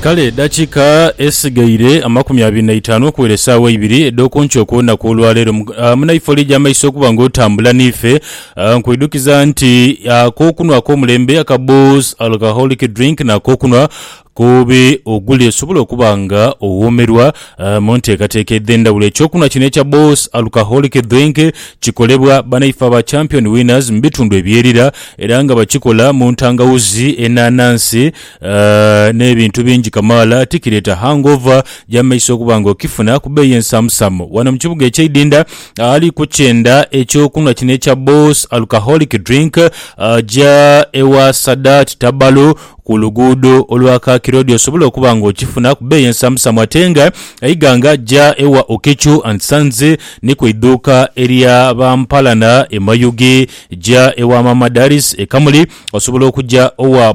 Kale edhakiika esigaire amakumi abiri na itaanu okuwera esaawa eibiri edh'oku nkyo okw'olunaku olwa leero, munaifo oligya amaiso okuba nga otambula n'ife. Nkwidhukiza nti ak'okunwa ak'omulembe aka Booz Alcoholic Drink n'ak'okunwa ku bi ogule osobole okuba nga owoomerwa Mu nteekateeka edh'endhawulo, ekyokunhwa kino ekya Boss Alcoholic Drink kikolebwa banaife aba Champion Winners mu bitundu ebyerira era nga bakikola mu ntangawuzi, enanansi n'ebintu bingi kamaala. Tikireeta hangover gya mu maiso okuba nga okifuna ku bbeeyi ensaamusaamu. Wano mu kibuga eky'e Idinda, ali kukyenda ekyokunhwa kino ekya Boss Alcoholic Drink aja ewa Sadat Tabalu, Ku luguudo olwa Kakira odi osobola okuba nga okifuna ku bbeeyi ensamusamu ate nga eiga nga ja ewa Okechu and Sons ni ku idhuuka erya ba Mpalana e Mayuge. Ja ewa Maama Daris e Kamuli, osobola okuja owa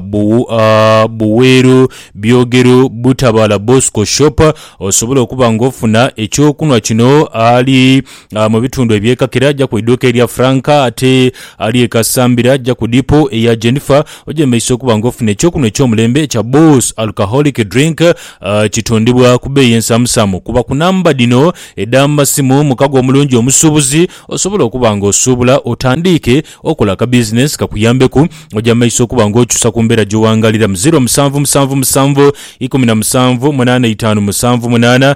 Buweeru, Byogeru, Butabaala Bosco Shop osobola okuba nga ofuna eky'okunhwa kino ali Ah, mu bitundu ebyekakira ajja ku iduuka erya Frank ate ali e Kasambira ajja ku dipo eya Jennifer. Ojemeise okuba nga ofuna eky'okunhwa eky'omulembe ekya Boss Alcoholic Drink. Ah, kitundibwa ku beeyi ensamusamu. Kuba ku namba dhino edh'amasimu mukago omulungi omusuubuzi osobola okuba nga osuubula otandiike okola akabizinensi kakuyambeku. Ojemeise okuba nga okyusa ku mbeera gy'owangaaliramu. Ziro musanvu musanvu musanvu ikumi na musanvu munaana itaanu musanvu munaana.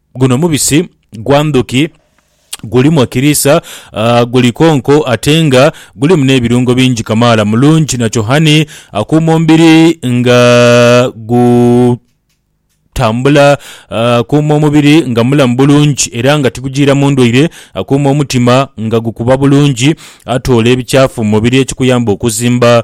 Guno mubisi gwa ndhuki, gulimu ekiriisa, guli konko ate nga gulimu n'ebirungo bingi kamaala. Mulungi nakyo honey, akuuma omubiri nga gu tambula, akuuma omubiri nga mulamu bulungi era nga tigujiira mu ndwaire, akuuma omutima nga gukuba bulungi, atoola ebikyafu mu mubiri ekikuyamba okuzimba.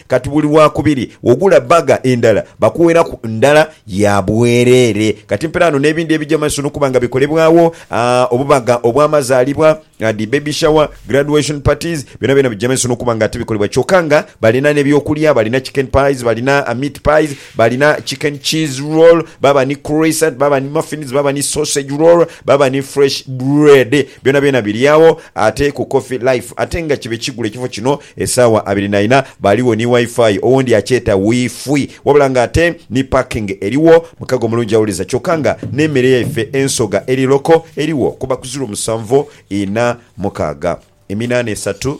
Kati buli Lwakubiri wogula bbaga endala bakuweraku ndala ya bwereere. Kati mpira ghano n'ebindi ebija mu maiso n'okuba nga bikolebwagho, obubaga obw'amazaalibwa, dhi baby shower, graduation parties, byonabyona bija mu maiso n'okuba nga ate bikolebwa kyoka nga balina n'ebyokulya, balina chicken pies, balina meat pies, Balina chicken cheese roll, baba ni croissant, baba ni muffins, baba ni sausage roll, baba ni fresh bread. Byona byona biri agho ate ku Coffee Life ate nga kibe kigule ekifo kino esaawa abiri na ina. Baligho ni Wi-Fi, owundi akyeta Wi-Fwi. Wabula nga ate ni parking erigho. Mukago omulungi awuliza kyoka nga n'emere yaife ensoga eri local erigho kuba ku ziro musanvu ina mukaaga, eminana esatu.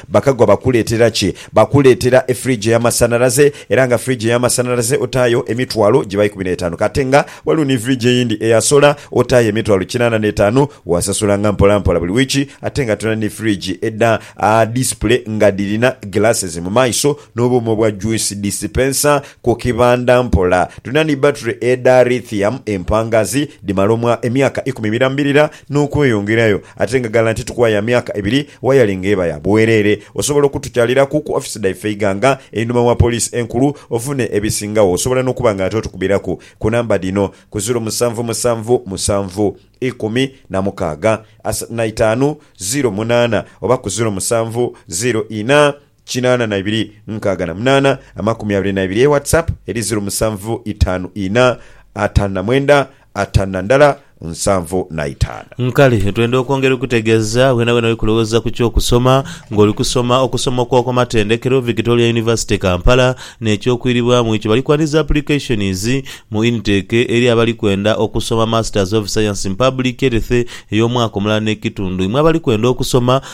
Bakagwa bakuleetera ki? Bakuleetera efiriji ey'amasanhalaze era nga firiji ey'amasanhalaze otaayo emitwalo giba ikumi n'etaanu. Ka ate nga waliwo ni firiji eyindi eya sola, otaayo emitwalo kinaana n'etaanu. Waasasulanga mpolampola buli wiiki. Ate nga tulina ni firiji edha disipule nga dhirina glasses mu maiso n'obuuma obwa juice dispenser ku kibanda. Mpola tulina ni battery edha lithium empangaazi, dhimala omwa emyaka ikumi emirambirira. n'okweyongerayo ate nga ghala nti tukwaya myaka ebiri wayali nga eba ya bwereere. Osobola okutukyaliraku ku ofisi dhaife eighanga einhuma wa poliisi enkulu ofune ebisingagho. Osobola n'okuba nga ate otukubiraku ku namba dhino, ku ziiro musanvu musanvu musanvu ikumi na mukaaga asatu na itaanu ziiro munaana oba ku ziiro musanvu ziiro ina kinaana na ibiri nkaaga na munaana amakumi abiri na ibiri e WhatsApp eri ziru musanvu itaanu ina ataanu na mwenda ataanu na ndala nsanvu na itaanu. Nkale twenda okwongera okukutegeeza weenaweena we kulowooza ku ky'okusoma ng'oli kusoma okusoma okw'oku matendekero, Victoria University Kampala n'eky'okwiribwamu ekyo bali kwaniriza applications mu intake eri abali kwenda okusoma Masters of Science in Public Health ey'omwaka omulala n'ekitundu. Imwe abali kwenda okusoma